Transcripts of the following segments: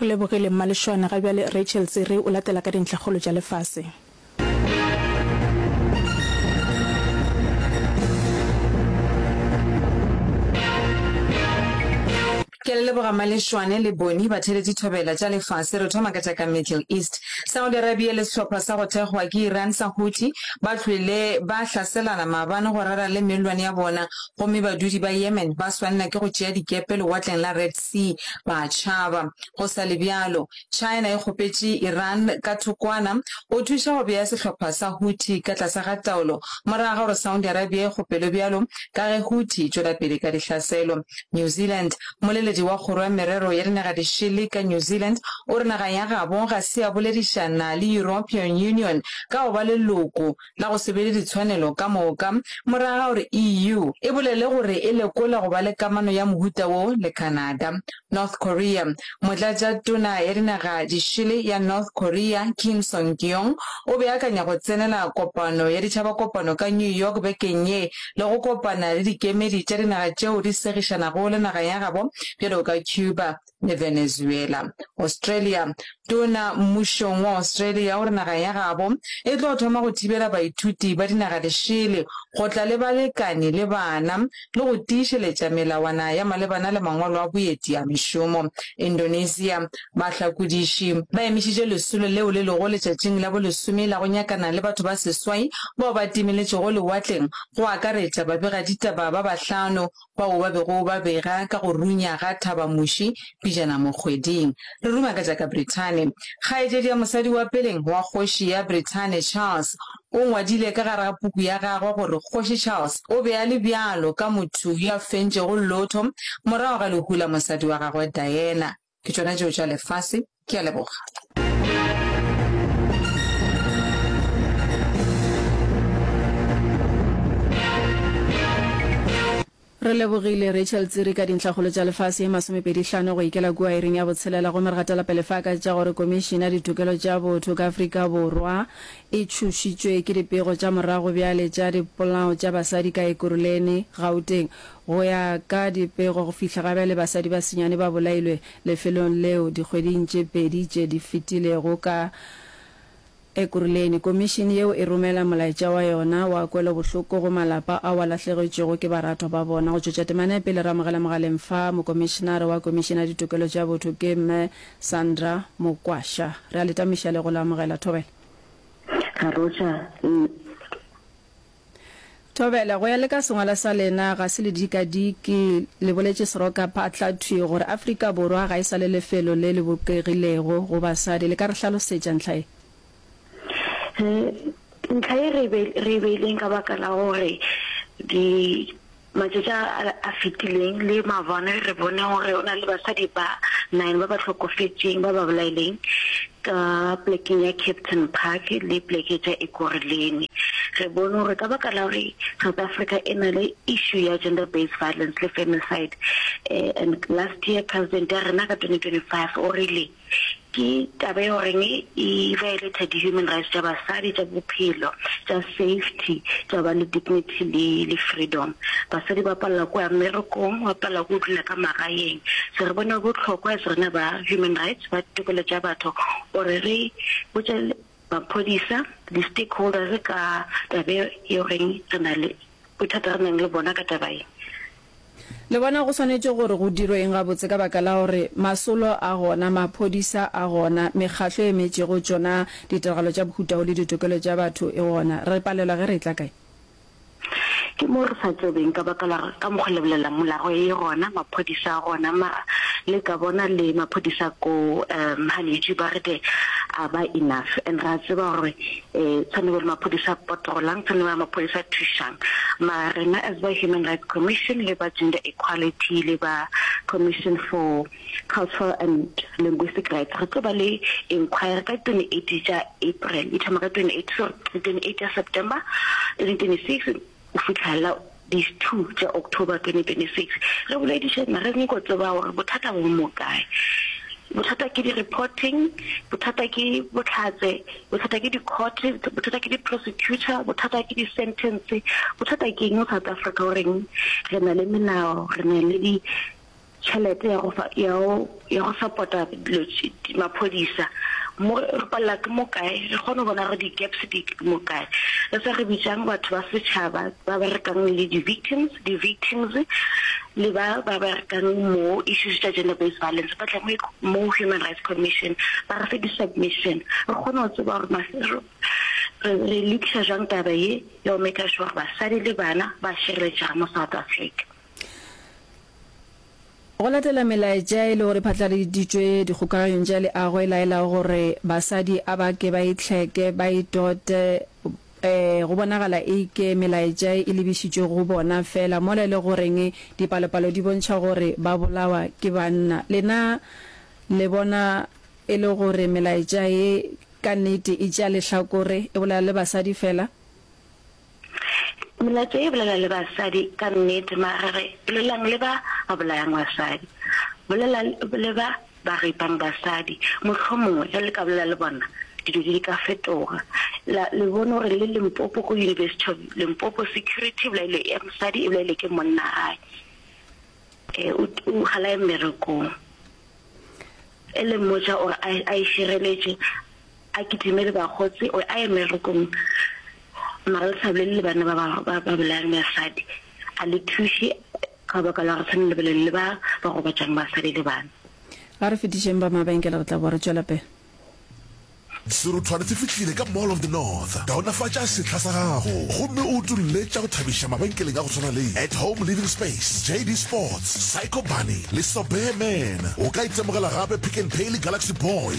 Re lebogile Mma Lešoane. Ga bjale Rachel Tsere o latela ka dintlhakgolo tša lefase. Ke a le leboga Mma Lešoane le Bonnie batheletši thobela tša lefase. Re thoma ka tša ka Middle East. Saudi Arabia le sehlopha sa go thekgwa ke Iran sa Houthi ba hlwele ba hlaselana maabane go rera le mellwane ya bona Gomme badudi ba Yemen ba swanela ke go tšea dikepe Lewatleng la Red Sea, ba tšhaba. Go sa le bjalo, China e kgopetše Iran ka thokwana go thuša go bea sehlopha sa Houthi ka tlase ga taolo morago ga gore Saudi Arabia e kgopelwe bjalo ka ge Houthi e tšwela pele ka dihlaselo. New Zealand, Mmoleledi wa Kgoro ya Merero ya Dinagadišele ka New Zealand o re naga ya gabo ga se ya boledišana le European Union ka go ba leloko la go se be le ditshwanelo ka moka, morago ga gore EU e bolele gore e lekola go ba le kamano ya mohuta wo le Canada. North Korea, Motlatšatona ya dinaga di šele ya North Korea Kim Song-kyong o beakanya go tsenela kopano ya ditšhabakopano ka New York bekeng ye le go kopana le dikemedi tša dinaga tšeo di segišanago le naga ya gabo bjalo ka Cuba, le Venezuela. Australia, Tona mmušong wa Australia o re naga ya gabo e tlo thoma go thibela baithuti ba dinaga lešele go tla le balekani le bana le go tiišeletša melawana ya malebana le mangwalo a boeti a mešomo. Indonesia, Bahlakodiši ba emišitše lesolo leo le lego letšatšing la bolesome la go nyakana le batho ba seswai bao ba timeletšego lewatleng go akaretša babegaditaba ba bahlano bao ba bego ba bega ka go runya ga Thabamuši pijana mo kgweding. Re ruma ka tša ka Brithane. Kgaetšedi ya mosadi wa peleng wa Kgoši ya Brithane Charles o ngwadile ka gare ga puku ya gagwe gore Kgoši Charles o be a le bjalo ka motho yo a fentšego lotho morago ga lehu la mosadi wa gagwe Diana. Ke tšona tšeo tša lefase. Ke a leboga. Re lebogile Rachel Tsiri ka dintlhakgolo tša lefase ye masomepedi hlano go ikela kua iring ya botshelela gomme re gatela pele fa ka tša gore Komišene ya Ditokelo tša Botho ka Afrika Borwa e tšhošitšwe ke dipego tša morago bjale tša dipolao tša basadi ka Ekurhuleni, Gauteng. Go ya ka dipego, go fihla ga bjale basadi ba senyane ba bolailwe lefelong leo dikgweding tše pedi tše di fetilego. Ka Ekuruleni, komišene yeo e romela molaetša wa yona wa kwelobohloko go malapa ao a lahlegetšwego ke baratwa ba bona. Go tšwetša temana ya pele, re amogela mogaleng fa Mokomišenare wa Komišene ya Ditokelo tša Botho ke Mme Sandra Mokwasha. Re a le tamošiša le go le amogela. Thobela. Garotša, L. Thobela, go ya le ka sengwala sa lena, ga se le dikadike, le boletše seroka phatla thwi gore Afrika Borwa ga e sa le lefelo le le bopegilego go basadi. Le ka re hlalosetša ntlha ye? Ntlha ye re e beileng ka baka la gore di. Matšatši a a fetileng le mabone re bone gore go na le basadi ba nine ba ba hlokofetšeng ba ba bolaileng ka polekeng ya Captain Park le poleke tša Ekurhuleni. Re bone gore ka baka la gore South Africa e na le issue ya gender based violence le femicide and last year President ya rena ka 2025 o rile, Ke taba yeo reng e violata di human rights tša basadi, tša bophelo, tša safety, tša ba le dignity le le freedom. Basadi ba palela ko ya mmerekong, ba palela ko dula ka magaeng. So re bona bohlokwa as rena ba human rights, ba tokelo tša batho gore re botše Maphodisa, di-stakeholders ka taba e o reng re na le bothata re nang le bona ka taba e. Le bona go swanetše gore go dirwe eng gabotse ka baka la gore masolo a gona, maphodisa a gona, mekgatlo e emetšego tšona ditiragalo tša bohuta wo le ditokelo tša batho e gona? Re palelwa ge re etla kae? Ke mo re sa tsebeng ka baka la ka mokgo le bolelang molago e gona maphodisa a gona mara le ka bona le maphodisa ko um ha le ba re ke a ba enough and ra tseba gore eh tshwane le maphodisa patrolang tshwane le maphodisa thushang mara rena as ba human rights commission le ba gender equality le ba commission for Cultural and Linguistic Rights. Re tlo ba le inquiry ka 28 tša April, e thoma ka 28, sorry, 28 tša September 2026 go fihlelela di 2 tša October 2026. Re boledišana, re nyako tseba gore bothata bo mo kae. Bothata ke di-reporting, bothata ke bohlatse, bothata ke di-court, bothata ke di-prosecutor, bothata ke di-sentence, bothata ke eng mo South Africa, goreng re na le melao, re na le di, tšhelete ya go ya go ya go support-a dilo maphodisa mo re palela ke mo kae re kgone go bona gore di-gaps di mo kae re sa re bitsang batho ba setšhaba ba berekang le di-victims di-victims le ba ba berekang mo issues tša gender based violence ba tla mo human rights commission ba re fe di-submission re kgone go tseba gore re lokisa jang taba ye ya go maker sure basadi le bana ba šireletšega mo south africa Go latela melaetša e lego re phatlaladitšwe dikgokaganyong tša leago e laelago gore basadi a ba ke ba itlheke, ba itote, e, go bonagala e ke melaetša e lebišitšwe go bona feela mola e le goreng dipalopalo di bontšha gore ba bolawa ke banna. Lena le bona e le gore melaetša ye ka nnete e tšea lehlakore, e bolela le basadi feela? Melato e bolela le basadi ka nnete, magare bolelang le ba ba bolayang basadi. Bolela le ba ba ripang basadi. Mohlomongwe ge le ka bolela le bona, dilo di ka fetoga. La le bone gore le Limpopo, ko University of Limpopo, security e bolailwe, ya mosadi e bolailwe ke monna gae, e o o ga la ye mmerekong, e le mmotša gore a a e šireletše. A kitimele bakgotsi, o a ye merokong, mara le sa bolelele banna ba ba, ba, ba bolayang basadi. A le thuše, ka baka la gore sa ne le bolele le ba ba gobatšang basadi le bana. A re fetišeng ba mabenkele, re tla boa re tšwela pele. Seruthwane se fihlile ka Mall of the North. Kaonafatša sehla sa gago gomme o utolle tša go thabiša mabenkeleng a go swana le At Home Living Space, JD Sports, Psycho Bunny le Sobeya Man. O ka itemogela gape Pick n Pay le Galaxy Boy.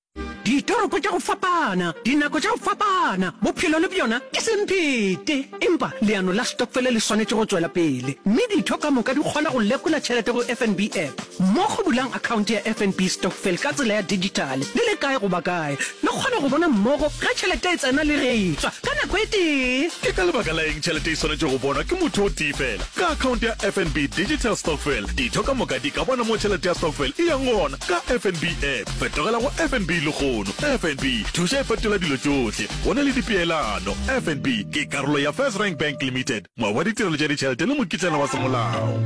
Ditoropo tša go fapana, dinako tša go fapana, bophelo le bjona ke semphete. Empa leano la stokfele le swanetše go tšwela pele, mme ditho ka moka di kgona go lekola tšhelete go FNB App. Mo go bulang akhaonte ya FNB Stokvel ka tsela ya dijithale, le le kae goba kae, le kgona go bona mmogo ge tšhelete e tsena le ge e tšwa ka nako e tee. Ke ka lebaka la eng tšhelete e swanetše go bonwa ke motho o tee feela? Ka akhaonte ya FNB Digital Stokvel, ditho ka moka di ka bona mo tšhelete ya stokvel e yang gona. Ka FNB app, fetogela go FNB lehono. FNB, thuša e fetola dilo tšohle. Go na le dipeelano. FNB ke karolo ya FirstRand Bank Limited, moabi wa ditirelo tša ditšhelete le mokitlana wa semolao.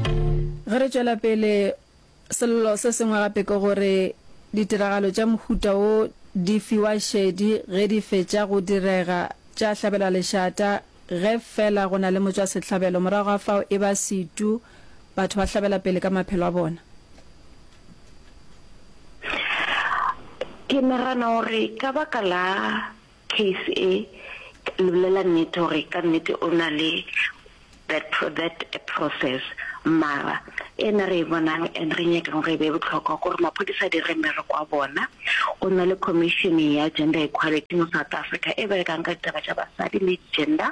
Ge re tšwela pele, sello se sengwe gape ke gore ditiragalo tša mohuta wo di fiwa šedi ge di fetša go direga, tša hlabelwa lešata ge feela go na le motšwasehlabelo. Morago ga fao e ba setu, batho ba hlabela pele ka maphelo a bona. Ke nagana gore ka baka la case e, ke le bolela nnete gore ka nnete o na le that that process mara e na re e bonang and re nyakang gore e be botlhokwa gore maphodisa a dire mmereko wa bona. Go na le commission ya gender equality mo South Africa e berekang ka ditaba tša basadi le gender.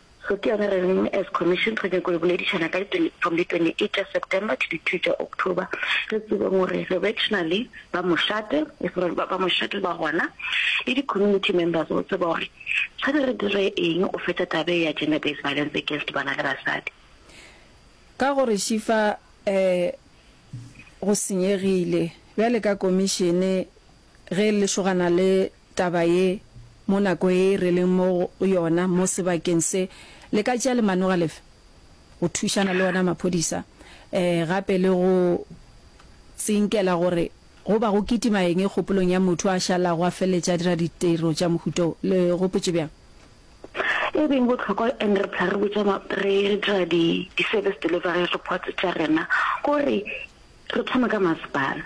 So ke yona re reng as commission re nyako le boledišana ka di from di 28 tša September to di 2 tša October re tsebeng gore re vectionally ba mošate e se ba ba mošate ba gona le di community members go tseba gore tshwane re dire eng o feta tabe ya gender based violence against bana le basadi ka gore shifa eh go senyegile bjale ka commission Ge le šogana le taba ye mo nako ye re leng mo go yona mo sebakeng se, le ka tšea lemanoga lefe go thušana le ona maphodisa gape le go tsinkela gore go ba go kitima eng kgopolong ya motho a šalago a feleletše a dira ditiro tša mohuta wo? Le gopotše bjang? E beng bohlokwa and re phela re botša re dira di-service delivery reports tša rena gore, Re thome ka masepala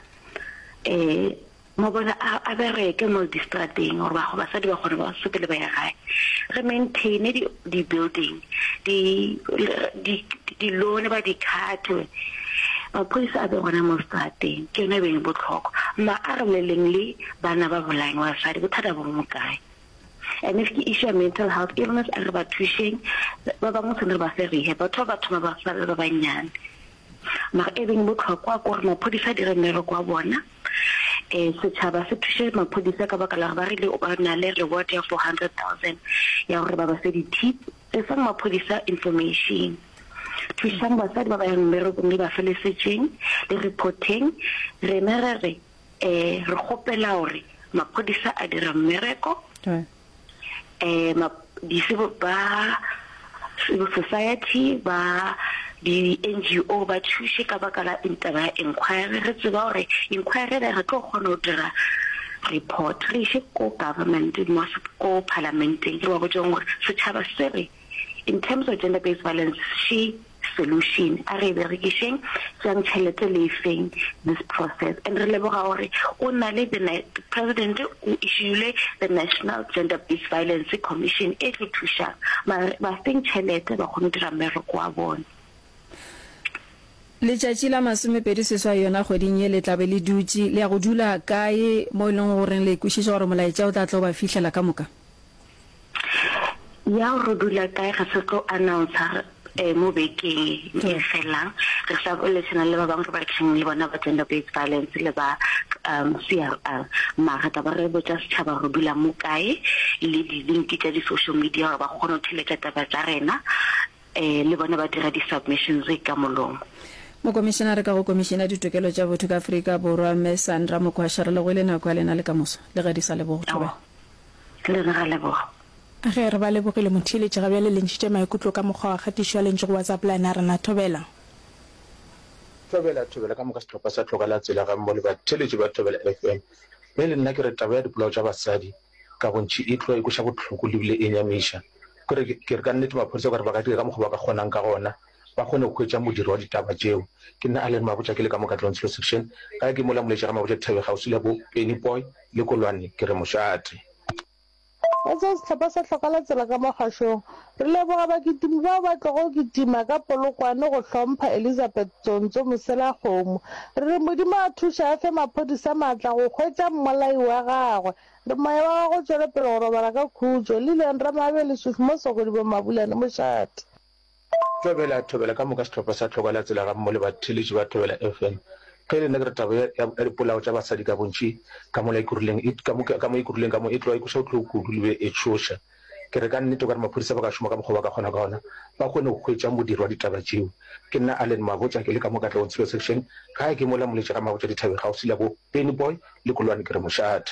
ee mabone a bereke mo distrateng gore ba go basadi ba kgone ba sepele ba ya gae re maintaine di di building di di di lone ba di khatwe maphodisa a be gona mo strateng ke yone e beng botlhokwa ma a re leleng le bana ba bolayeng wa basadi bothata bo mo kae and if ke issue ya mental health illness a re ba thušeng ba bangwe tshwanetse re ba fe rehab batho ba ba thoma ba sa ba bannyane Mara e beng botlhokwa kore maphodisa a dire mmereko wa bona, um setšhaba se thuše maphodisa ka baka la gore ba rile ba na le reward ya four hundred thousand ya gore ba ba fe di-tip. Tlisang maphodisa information, thušang basadi ba ba yang mmerekong le ba fe lesetšeng le report-eng. Rena re re um re kgopela gore maphodisa a dira mmereko. eh ma di civil ba civil society ba di NGO ba thuše ka baka la taba ya inquiry re tseba gore inquiry ena re tlo kgona go dira report re iše ko government mo ko parlamenteng re ba botšeng gore setšhaba se re In terms of gender based violence she solution a re e berekišeng jang tšhelete le efeng this process and re leboga gore o na le the president o issuele the national gender based violence commission e tlo thušang mare ba feng tšhelete ba kgone go dira mmereko wa bone Letšatši la masomepedi seswai yona kgweding ye le tlabe le dutše le ya go dula kae mo e leng goreng le ikwešiša gore molaetša o tla tlo ba fihlela ka moka? Yaw re dula kae re se tlo announcer eh mo bekeng e felang re sa boletsana le ba bang re berekang le bona ba gender based violence le ba um CRR mara taba re botsa setšhaba re dula mo kae le di link tša di social media gore ba kgone go theletša taba tša rena eh le bona ba dira di submissions ka molomo. Mokomišenare ka go Komišene ya Ditokelo tša Botho ka Afrika Borwa Ms Sandra Mokwasha re lebohile nako ya lena le ka moso le ge di sa lebogo thobela. Le na ra leboga. Ge re ba lebogile, motheeletši ga bjale le ntšhitše maikutlo ka mokgwa wa kgatišo a lentšu go WhatsApp la na rena. Thobela. Thobela, Thobela ka moka sehlopha sa Tlhoka la Tsela gammo le batheeletši ba Thobela FM. Ge e le nna ke re taba ya dipolao tša basadi ka bontši e tloga e kweša bohloko le bile e nyamiša. Ke re, ke re ka nnete maphodisa o ka re ba ka dira ka mokgwa ba ka kgonang ka gona ba kgone go hwetša modiro wa ditaba tšeo. Ke nna Allan Mabotja, ke le ka mo Katlehong Silo Section. Gae ke mola Moletša ga Mabotja Dithabeng kgauswi le bo Penny Poy le Kolwane ke re mošate. Ka seo sehlopha sa hloka la tsela ka mo kgašong. Re leboga bakitimi bao ba tlogo go kitima ka polokwane go hlompha Elizabeth Tsontso Moselakgomo. Re re Modimo a thuše a fe maphodisa matla go hwetša mmolai wa gagwe. Re moya wa gago o tšwele pele go robala ka khutšo. Lillian Ramabele Sufi Mosoko Dibomabulane mošate. Thobela, Thobela, ka moka sehlopha sa Tlhoka la Tsela gammogo le batheeletši ba Thobela FM. Ge e le nna ke re taba ya, ya, ya dipolao tša basadi ka bontši ka mola Ekurhuleng, e, ka mo, ka mo Ekurhuleng ka mo, e tloga e kweša bohloko kudu le be e tšhoša. Ke re ka nnete o ka re maphodisa ba ka šoma ka mokgwa ba ka kgona ka ona ba kgone go hwetšang modiro wa ditaba tšeo. Ke nna Allen Mabotja, ke le ka mo Katlehong Tshilo Section, gae ke mola Moletše Ramabotja Dithabeng kgaufsi la bo Pennyboy le Kolwane Ke re mošate.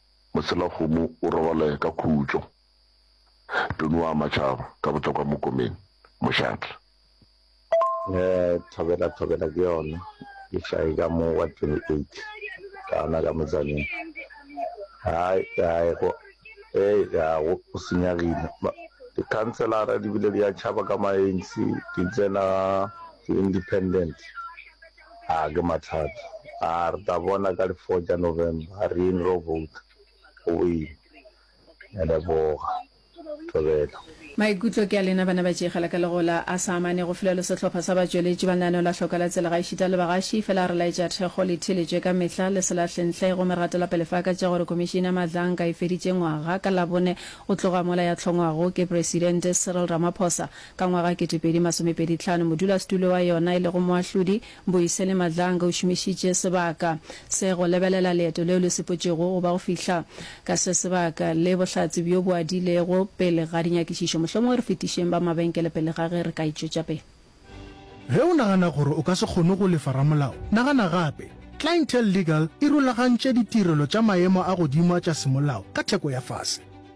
Moselagomo o rogole ka khutšo. Toni o ama tšhaba ka bohlokwa mo komeng. Mošatla. Thobela, thobela ke yona e hlaye ka mo wa 28 ka ona ka metsaneng. Hai, hai go, hei ya go go senyagile. Ba, dikhanselara di bile di a tšhaba ka ma ANC, di tsena di-independent. A ke mathata a? Re tla bona ka di four tša November, a re yeng re yo vouta. Go boima. Ke a leboga. Thobela. Maikutlo ke a lena bana ba tšega la ka legola a sa amane go fela lo sehlopha sa batšweletši ba lenaneho la hloka la tsela gaešita le bagaši fela a re laetša thekgo le theeletšwe ka mehla le se lahle ntle gomme re gatela pele fa ka tša gore komišene ya madlanka e feditše ngwaga ka labone go tloga mola ya hlongwago ke presidente Cyril Ramaphosa Ka ngwaga ketepedi masomepedi tlhano, modulasetulo wa yona e lego Moahlodi, Mbuyiseni Madlanga o šomišitše sebaka se go lebelela leeto leo le sepotšego go ba go fihla ka se sebaka le bohlatse bjo bo adilego pele ga dinyakišišo. Mohlomongwe re fetišeng ba mabenkele pele ga ge re ka e tšwetša pele. Ge o nagana gore o ka se kgone go lefa ramolao, nagana gape. Clientele Legal e rulagantše ditirelo tša maemo a godimo a tša semolao ka theko ya fase.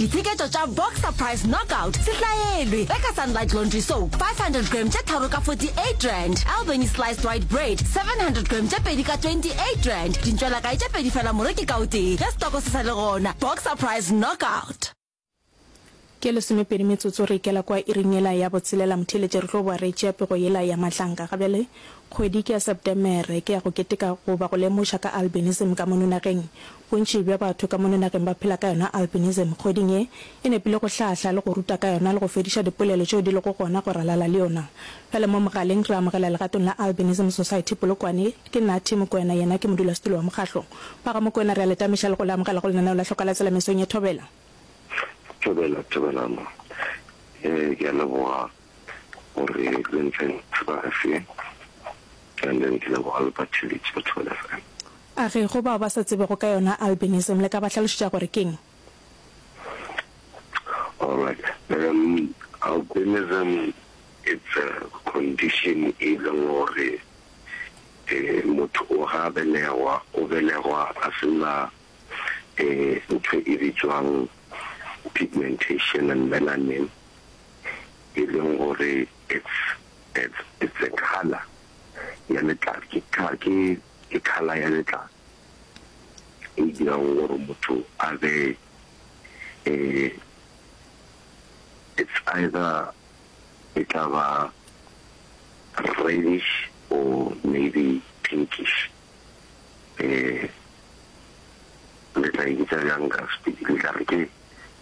Ditsheketšo tša Boxer Price Knockout se hlaelwe ge ka Sunlight Laundry Soap 500 gram tše tharo ka 48 rand, Albany Sliced White Bread 700 gram tše pedi ka 28 rand, dintšwelakae tše pedi fela moreki ka o tee ge setoko se sa le gona. Boxer Price Knockout. Ke lesomepedi metsotso re ikela kwa iring yela ya botshelela motheeletše re tlo boa re tšea pego yela ya matlanka gabjale kgwedi ke ya Septemere ke ya go keteka goba go lemoša ka albinism ka mono nageng Bontši bja batho ka mono nageng ba phela ka yona albinism. Kgweding ye, e nepile go hlahla le go ruta ka yona le go fediša dipolelo tšeo di lego gona go ralala le yona. Bjale mo mogaleng re amogela legatong la Albinism Society Polokwane. Ke Natty Mokoena, yena ke modulasetulo wa mokgahlo. Ba ga Mokoena re a le tameša le go le amogela go lenaneo la Hloka la Tsela mesong ye. Thobela. Thobela, Thobela mma. Ee, ke a leboga. gore le ntseng sebase and then ke leboga le batheletši ba Thobela FM. A re go bao ba sa tsebego ka yona albinism le ka ba hlalošetša gore keng? Alright, um, albinism it's a condition e leng gore um motho o ga belegwa, o belegwa a se na um ntho e bitswang pigmentation and melanin e leng gore it's it's it's a colour ya letlalo, ke ke ke colour ya letlalo e dirago gore motho a be eh, it's either e tla ba reddish or maybe pinkish eh le tla e bitsa bjang ka sepedi le tla re ke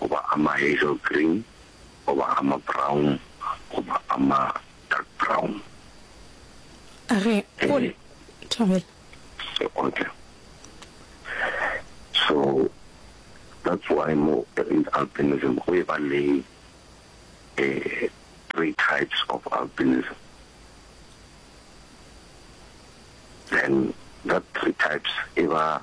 goba a ma-hazel green goba a ma-brown goba a ma-dark brown. A re, Go le, Thobela. So, okay. So, that's why mo in albinism go e ba le eh, three types of albinism. Then that three types e ba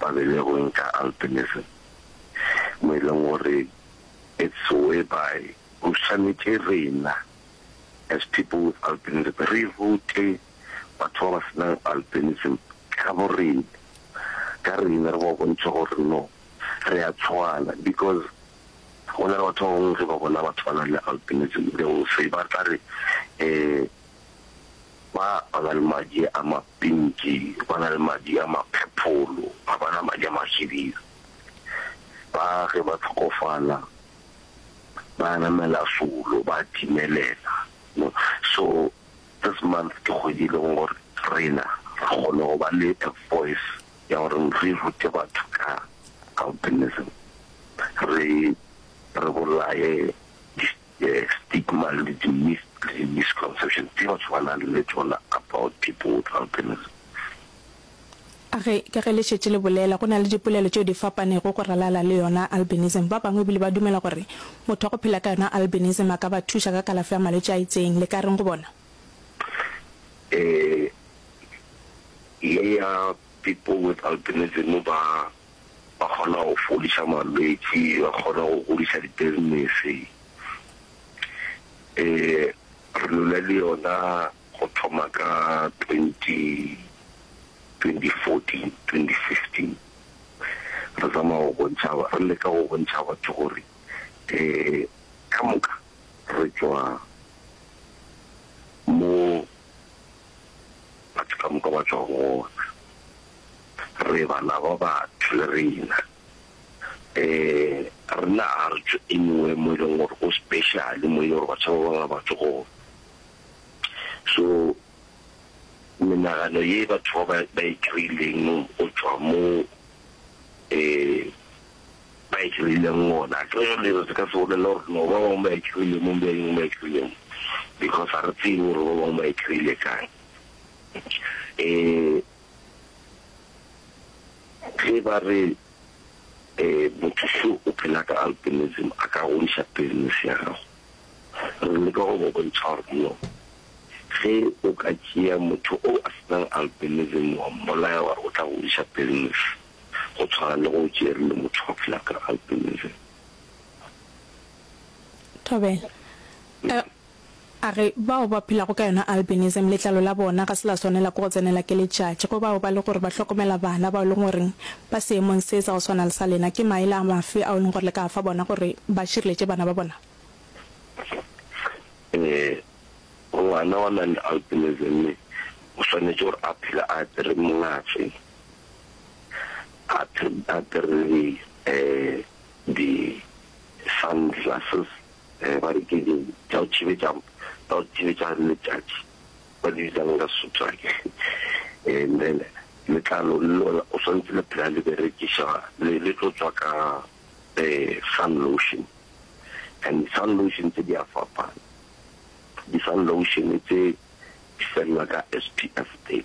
ba be le go ntša albinism, mo e leng gore it's whereby go swanetše rena as people with albinism re rute batho ba ba se nang albinism ka borena ka rena, re ba bontšhe gore no re a tshwana because go na le batho ba bangwe ge ba bona batho ba nang le albinism they will say ba tla re um Ba ba na le madi a mapinki ba na le madi a maphepholo, ga ba na madi a mahibidu. Ba ge ba hlokofala ba namela solo, ba timelela. So this month ke kgwedi e leng gore rena ra kgona go ba le a voice ya gore re rute batho ka albinism, re re bolaye di. The stigma le di myth le misconceptions tše batho ba nang le tšona about people with albinism. A re, ka ge le šetše le bolela, go na le dipolelo tšeo di fapanego go ralala le yona albinism. Ba bangwe e bile ba dumela gore motho wa go phela ka yona albinism a ka ba thuša ka kalafo ya malwetši a itseng. Le ka reng go bona? Ee, ye ya people with albinism ba ba kgona go fodiša malwetši, ba kgona go godiša di-business-e. Re lula le yona go thoma ka twenty, twenty fourteen, twenty fifteen. Re tsamaya go bontšha, re leka go bontšha batho gore ka moka re tšwa mo Batho ka moka ba tšwa go wona. Re bana ba batho le rena. Um rena ga re tšwe anywhere mo e leng gore go special, mo e leng gore batho ba bangwe ga ba tšwe go gona. So menagano ye batho ba ba e kry-ileng go tšwa mo um. ba e kry-ileng gona. Ge re dira se ka se bolele gore no ba bangwe ba e kry-ile mo be eng ba e kry-ile mo because ga re tsebe gore ba bangwe ba e kry-ile kang. Um ge ba re um motho so o phela ka albinism a ka godiša business ya gago, re leka go ba bontšha gore no ge o ka tšea motho o a senang albinism wa mmolaya wa re o tla godiša business, go tshwana le go Jerry le motho wa phela ka albinism. Thobela, A, a re bao ba phelago ka yona albinism letlalo la bona ga se la swanela ke go tsenela ke letšatši, go bao ba le gore ba hlokomela bana bao e leng gore ba seemong se sa go swana le sa lena, ke maele a mafe ao e leng gore le ka a fa bona gore ba šireletše bana ba bona? Ee, ngwana wa nang le albinism o swanetše gore a phele a apere mongase. Apere di di sunglasses ba re ke di tša go thibetša tša go thibetša letšatši ba di bitsang ka Sotho ake and then letlalo le lona o swantse le phela le berekiša le tlo tswa ka sun lotion and di sun lotion tse di a fapana di sun lotion tse di felela ka SPF 30.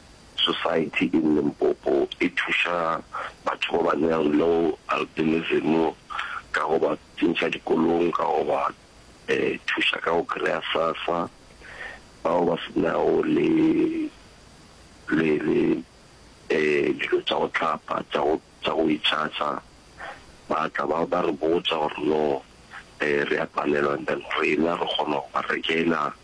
Society in Limpopo e thuša batho ba ba nang le albinism ka go ba tsentšha dikolong, ka go ba thuša ka go kry-a sassa, bao ba se nago le dilo tša go hlapa tša go itšhatša, ba tla ba re botša gore no re a palelwa and then rena re kgona go ba rekela.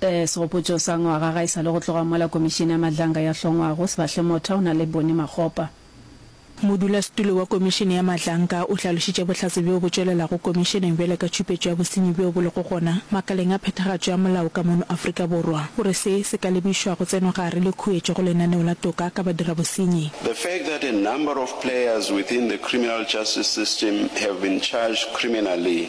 Segopotšo sa ngwaga ga e sa le go tloga mola Komišene ya Madlanga ya hlongwago, Sebahle Motha o na le Boni Makgopa. Modulasetulo wa Komišene ya Madlanga o hlalošitše bohlatse bjo bo tšwelelago Komišeneng bjale ka tšhupetšo ya bosenyi bjo bo lego gona makaleng a phethagatšo ya molao ka mono Afrika Borwa. O re se se ka lebišwa go tsenogare le khuetšo go lenaneo la toka ka badirabosenyi. The fact that a number of players within the criminal justice system have been charged criminally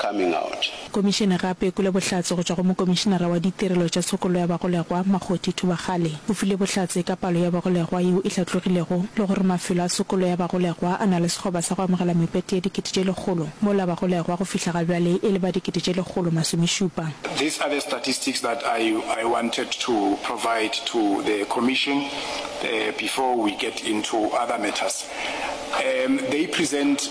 coming out. Komišene gape e kwele bohlatse go tšwa go Mokomišenara wa Ditirelo tša Tshokollo ya Bagolegwa, Makgothi Thubagale. O file bohlatse ka palo ya bagolegwa yeo e hlatlogilego le gore mafelo a tshokollo ya bagolegwa a na le sekgoba sa go amogela mepete ya dikete tše lekgolo, mola bagolegwa go fihla ga bjale e le ba dikete tše lekgolo masomešupa. These are the statistics that I I wanted to provide to the Commission before we get into other matters. They present.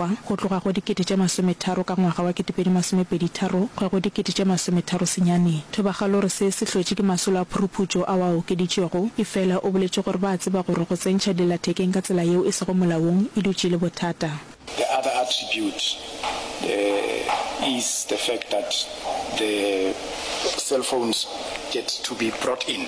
Mokgwa, go tloga go dikete tše masometharo ka ngwaga wa ketepedi masomepedi tharo go ya go dikete tše masometharo senyane. Thobagalore se se hlotše ke masolo a phuruphutšo ao a okeditšwego, efela o boletše gore ba a tseba gore go tsentšha dillathekeng ka tsela yeo e sego molaong e dutše e le bothata. The other attribute is the fact that the cellphones get to be brought in.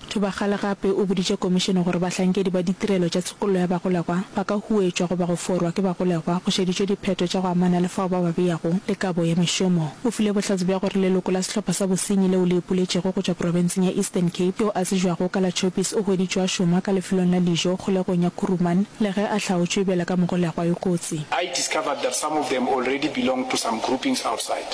Thubagale gape o boditše komišene gore bahlankedi ba ditirelo tša tshokollo ya bagolegwa ba ka huwetšwa goba go forwa ke bagolegwa go šeditšwe diphetho tša go amana le fao ba ba beyago le kabo ya mešomo. O file bohlatse bja gore leloko la sehlopha sa bosenyi leo le ipoletšego go tšwa profenseng ya Eastern Cape yo a tsejwago ka la Choppies o hweditšwe a šoma ka lefelong la dijo kgolegong ya Kuruman le ge a hlaotšwe bjalo ka mogolegwa yo kotsi. I discovered that some of them already belonged to some groupings outside.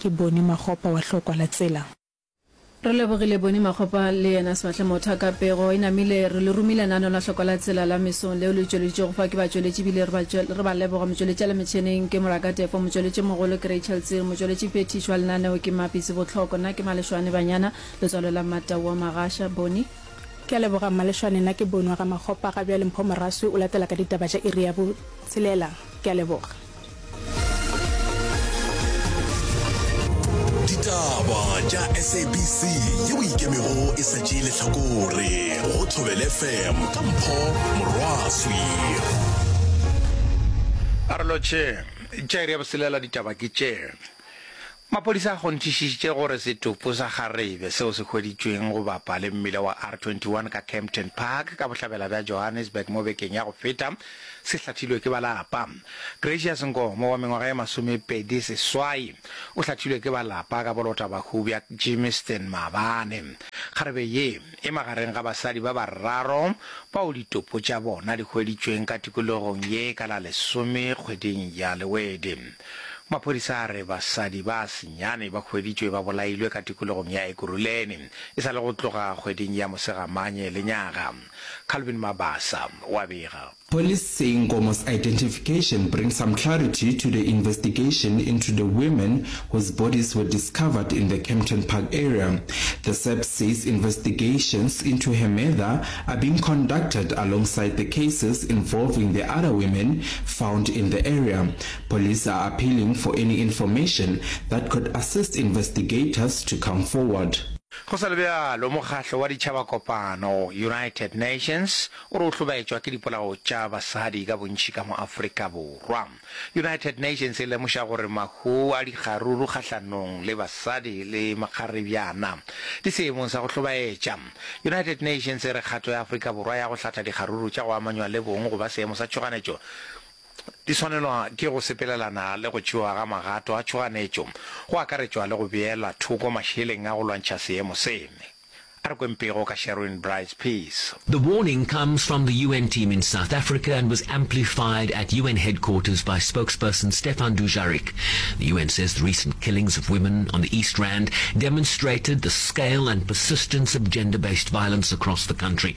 Ke Boni Makgopa wa Hlokwa la Tsela. Re lebogile Boni Makgopa le yena Sebatle Motha ka pego e namile. Re le romile naano la Hlokwa la Tsela la mesong leo le tšweleditšwego fa ke batšweletši ebile re ba re ba leboga. Motšweletši a le metšheneng ke Moraka Tefo, motšweletši e mogolo ke Rachel Tsiri, motšweletši phethiši wa lenaneo ke Mappy Sebotlhoko, nna ke Malešwane Banyana, letswalo la Mmatau wa Magasha. Boni. Ke a leboga Mmalešwane, nna ke Boni wa ga Makgopa. Ga bjale Mpho Moraswi o latela ka ditaba tša iri ya bo tshelela. Ke a leboga. ditaba tša sabc ye o ikemego e sa tšee lehlakore go thobele fm ka mpho morwaswi a re lotšhe tšaere ya boselela ditaba ke tše Maphodisa a kgonthišišitše gore setopo sa kgarebe seo se hweditšweng go bapa le mmila wa R21 ka Kempton Park ka bohlabela bja Johannesburg mo bekeng ya go feta se hlathilwe ke ba lapa. Gracious Nkomo wa mengwaga ye masomepedi seswai o hlathilwe ke ba lapa ka bolota bahu bja Gymiston maabane. Kgarebe ye e magareng ga basadi ba bararo bao ditopo tša bona di hweditšweng ka tikologong ye ka la lesome kgweding ya Lewedi. Maphodisa a re basadi ba senyane ba hweditšwe ba bolailwe ka tikologong ya Ekurhuleni e sa le go tloga kgweding ya Mosegamanye lenyaga. Calvin Mabasa o a bega. Police say Nkomo's identification brings some clarity to the investigation into the women whose bodies were discovered in the Kempton Park area. The SAPS says investigations into her murther are being conducted alongside the cases involving the other women found in the area. Police are appealing for any information that could assist investigators to come forward. Go sa le bjalo, Mokgatlo wa Ditšhabakopano, United Nations, o re o hlobaetšwa ke dipolao tša basadi ka bontši ka mo Afrika Borwa. United Nations e lemoša gore mahu a dikgaruru kgahlanong le basadi le makgarebjana di seemong sa go hlobaetša. United Nations e re kgato ya Afrika Borwa ya go hlatha dikgaruru tša go amanywa le bong go ba seemo sa tšhoganetšo di swanelwa ke go sepelelana le go tšewa ga magato a tšhoganetšo, go akaretšwa le go beelwa thoko mašeleng a go lwantšha seemo se. A re kweng pego ka Sherwin Brice Peace. The warning comes from the UN team in South Africa and was amplified at UN headquarters by spokesperson Stefan Dujarric. The UN says the recent killings of women on the East Rand demonstrated the scale and persistence of gender-based violence across the country.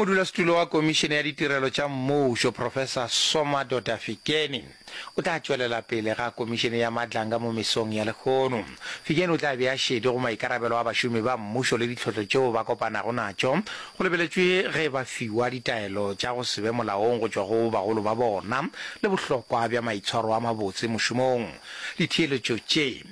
Modulasetulo wa Komišene ya Ditirelo tša Mmušo, Professor Soma Doda-Fikeni, o tla tšwelela pele ga Komišene ya Madlanga mo mesong ya lehono. Fikeni o tla bea šedi go maikarabelo a bašomi ba mmušo le ditlhohlo tšeo ba kopanago natšo, go lebeletšwe ge ba fiwa ditaelo tša go se be molaong go tšwa go bagolo ba bona le bohlokwa bja maitshwaro a mabotse mošomong. Ditheeletšo tše.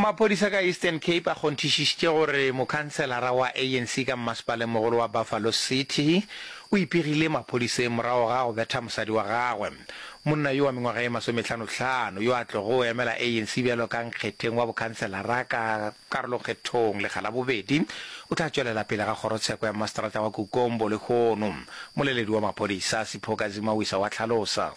Maphodisa ka Eastern Cape a kgonthišištše gore mokhanselara wa ANC ka mmasepaleng-mogolo wa Buffalo City o ipegile maphodiseng morago ga go betha mosadi wa gagwe. Monna yo wa mengwaga ye masometlhano-tlhano yo a tlogo emela ANC bjalo ka nkgetheng wa bokhanselara ka karolokgethong lekga la bobedi o tla tšwelela pele ga kgorotsheko ya mmaseterata wa Kukombo lehono, moleledi wa maphodisa Sipho Kazimawisa wa hlalosa.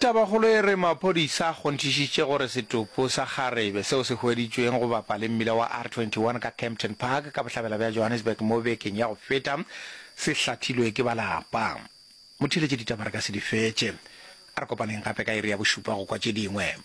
Tabakgolo e re maphodisa a kgonthišitše gore setopo sa kgarebe seo se hweditšweng go bapa le mmila wa R21 ka Kempton Park ka bohlabela bja Johannesburg mo bekeng ya go feta se hlathilwe ke ba lapa. Motheeletšeditaba re ka se di fetše. A re kopaneng gape ka iri ya bošupa go kwa tše dingwe.